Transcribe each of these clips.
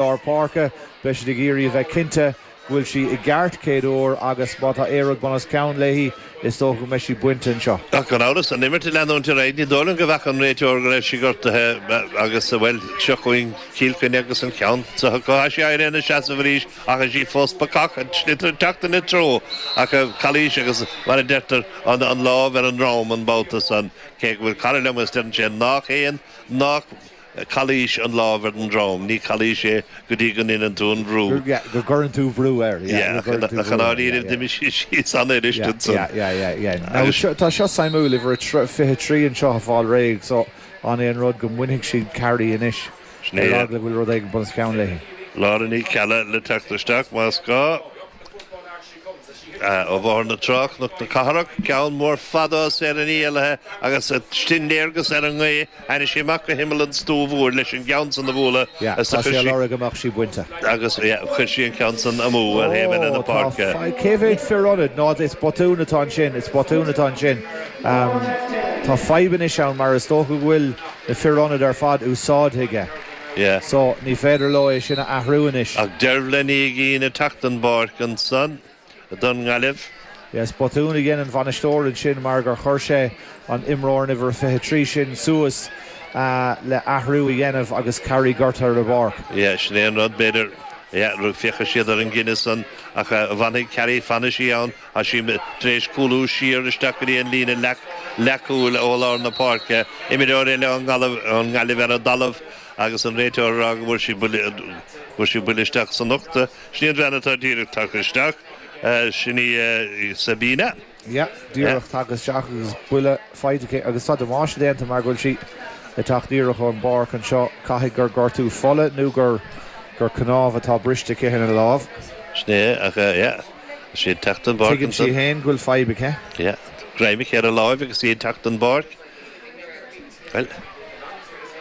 lár páirce. Beidh siad ag iarraidh a bheith cinnte go bhfuil sí i gceart céad uair agus má tá aon rud bunoscionn léi, is dócha go mbeidh sí bainte anseo. Ach gan amhras, an imirt ag leanúint ar aghaidh, ní dóigh liom go bhfeaca an réiteoir go raibh sí gortaithe agus, bhuel, seo chugainn Cill Chainnigh agus an ceann sa hocáid. Tá sí éirithe ina seasamh arís ach í fós bacach an sliotar ag teacht ina treo ach calaois agus, mar a deirtear, an lámh ar an ndroim an babhta san cé go bhfuil cara liom agus deireann sé nach aon calaois an lámh ar an drom, ní calaois é go dtí go ndéanann tú an bhrú. yeah go gcuireann tú bhrú air yeah go gcuireann tú bhrú air. yeah ach i ndáiríribh d'imigh sí síos an-fhuirist ansan. yeah yeah yeah yeah now agus seo tá seo suimiúil uimhir a 23 anseo ag fáil réidh so an é an rud go mbainfidh siad Carrie anois sin ar é eagla go bhfuil rud éigin bunoscionn léi. Laura Ní Cheallaigh le teacht isteach más gá. Ó Bhóthar na Trá, Cnoc na Cathrach, Ceann Mór Fada, ó Sarah Ní Éalaithe agus sin léargas ar an ngaoth tháinig sí amach go himeall an stúf úir leis an gceann san a bhualadh agus Tá sé á lorg go mbeadh sí bainte. agus chuir sí an ceann san amú ar thaobh eile na páirce. Ó tá, cé mhéad fir ionad? Ná is botún atá ansin, is botún atá ansin. Tá fadhb anois ann mar is dócha go bhfuil na fir ionad ar fad úsáidte aige. Yeah. So, ní féidir leo é sin a athrú anois. Ach Dervla Ní Uiginn ag teacht den bpáirc ansan don nGaillimh. Yes, botún a dhein an bainisteoir ansin mar gur chuir sé an imreoir an uimhir a 23 sin suas le athrú a dhéanamh agus Carrie gortaithe ar an bpáirc. Yeah, sin é an rud, b'fhéidir. Yeah, rug, féachfaidh siad ar an gcinneadh san ach an bhfanfaidh Carrie, fanfaidh sí ann. Tá sí tar éis cúlú siar isteach go dtí an líne leathchúil ó lár na páirce, imreoir eile ón nGaillimh ar an dtalamh agus an réiteoir ag rá go bhfuair sí buille isteach san ucht. Sin í an bhean atá díreach tagtha isteach, sin í Sabina. Yeah, díreach tagtha isteach agus buille faighte aici agus tá damáiste déanta mar go bhfuil sí ag teacht díreach ón bpáirc anseo. Caithfidh gur gortú fola nó gur cnámh atá briste aici ar an lámh. Sin é, ach yeah. Is í ag teacht den bpáirc Tuigeann sí ansan. féin go bhfuil fadhb aici. Yeah. Greim aici ar a láimh agus í ag teacht den bpáirc. Bhuel,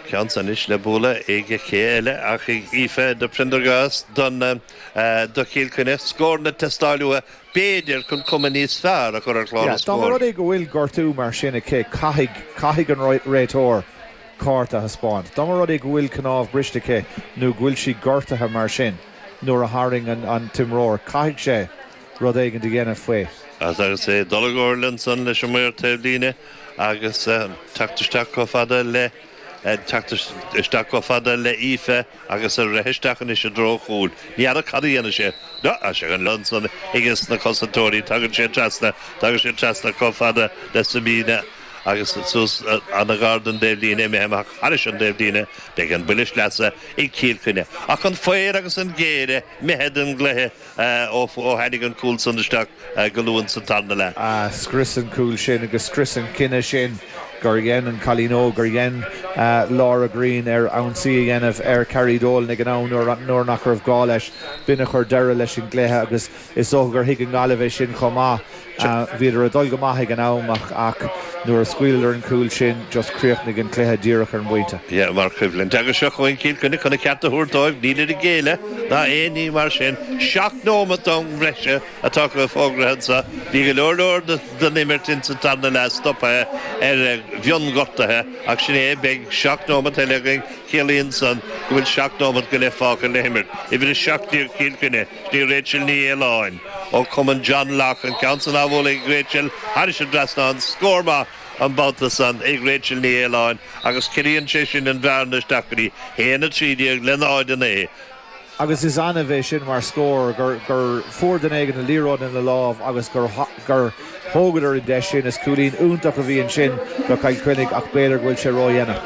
ceann anois le bualadh ag cé eile ach ag Aoife de Priondargás don eh, do Chill Chainnigh. Scór ag teastáil uathu, b'fhéidir, chun cuma níos fearr a chur ar chlár na Yeah, dá mba scór. rud é go bhfuil gortú mar sin aici, caithfidh, caithfidh an réit, réiteoir cárta a thaispeáint. Dá mba rud é go bhfuil cnámh briste aici nó go bhfuil sí gortaithe mar sin, Nuair a tharraing an t-imreoir, caithfidh sé rud éigin a dhéanamh faoi. Ach agus é ag dul i gcomhairle ansan leis an maor taobhlíne agus teacht isteach chomh fada le teacht isteach chomh fada le Aoife agus ag rith isteach anois i dtreo chúil, ní fheadar cad a dhéanfaidh sé. Tá sé chun liom san, aiges na cosantóirí, tagann sé trasna, tagann sé trasna chomh fada le Sabina. agus suas i ngar don dtaobhlíne, imithe amach thairis an dtaobhlíne, beidh an buille sleasa ag Cill Chainnigh. Ach an faobhar agus an ghéire imithe den gcluiche ó tháinig an cúl san isteach go luath sa tarna leath. Scrios an cúl sin agus scrios an cinneadh sin gur dhein an cailín óg, gur dhein Laura Greene, ar ionsaí a dhéanamh ar Carrie Dolan ag an am nuair nach raibh gá leis. B'in a chuir deireadh leis an gcluiche agus. Is dócha gur thuig an Gaillimh é sin chomh maith. Bhíodar ag dul go maith ag an am ach nuair a scaoileadar an cúl sin, just chríochnaigh an cluiche díreach ar an bpointe. Sea, mar choimhlint. Agus seo chugainn Cill Chainnigh chun a gceart a thabhairt dóibh. Nílid ag géilleadh ná aon ní mar sin. Seacht nóimeat d'am breise atá fógraithe anseo. Bhí go leor leor den imirt ins an tarna leath stopaithe ar mhion-ghortuithe ach sin é, beidh seacht nóimeat eile againn. Ciallaíonn san go bhfuil seacht nóimeat go leith fágtha le himirt. Uimhir a seacht déag Cill Chainnigh. Sin í Rachel Ní Fhaoláin ó Chumann John Locke an ceann san á bhualadh ag Rachel thairis an dtrasnán scór maith an babhta san ag Rachel Ní Fhaoláin agus ciallaíonn sé sin an bhearna isteach go dtí 1:13 le 0:9. agus is annamh é sin mar scór, gur fuair duine éigin an liathróid ina lámh agus gur. gur thógadar an deis sin. Is cúilín iontach a bhí ansin do Chill Chainnigh ach b'fhéidir go bhfuil sé ródhéanach.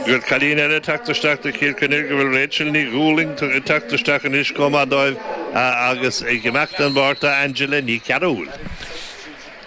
Go bhfuil cailín eile ag teacht isteach do Chill Chainnigh go bhfuil Rachel Ní Dhúlaing ag teacht isteach anois chomh maith dóibh agus ag imeacht den bpáirc tá Angela Ní Chearúil.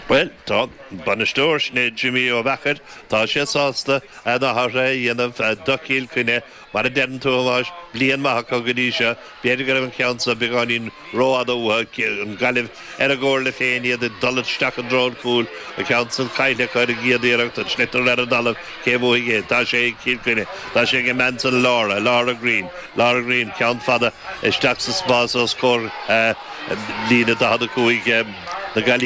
Bhuel, tá an bainisteoir, sin é Jimmy Ó Meachair, tá sé sásta na hathruithe a dhéanamh do Chill Chainnigh. Mar a deireann tú, a Thomáis, bliain mhaith acu go dtí seo. B'fhéidir go raibh an ceann seo beagáinín rófhada uathu, an Gaillimh ar a gcomhairle féin, iad ag dul isteach i dtreo an chúil, an ceann san caillte acu ar an gcéad iarracht, an sliotar ar an dtalamh, cé bhuafaidh é? Tá sé ag Cill Chainnigh. Tá sé ag an mbean san, Laura, Laura Green. Laura Green, ceann fada isteach sa spás os comhair líne 45 na Gaillimhe.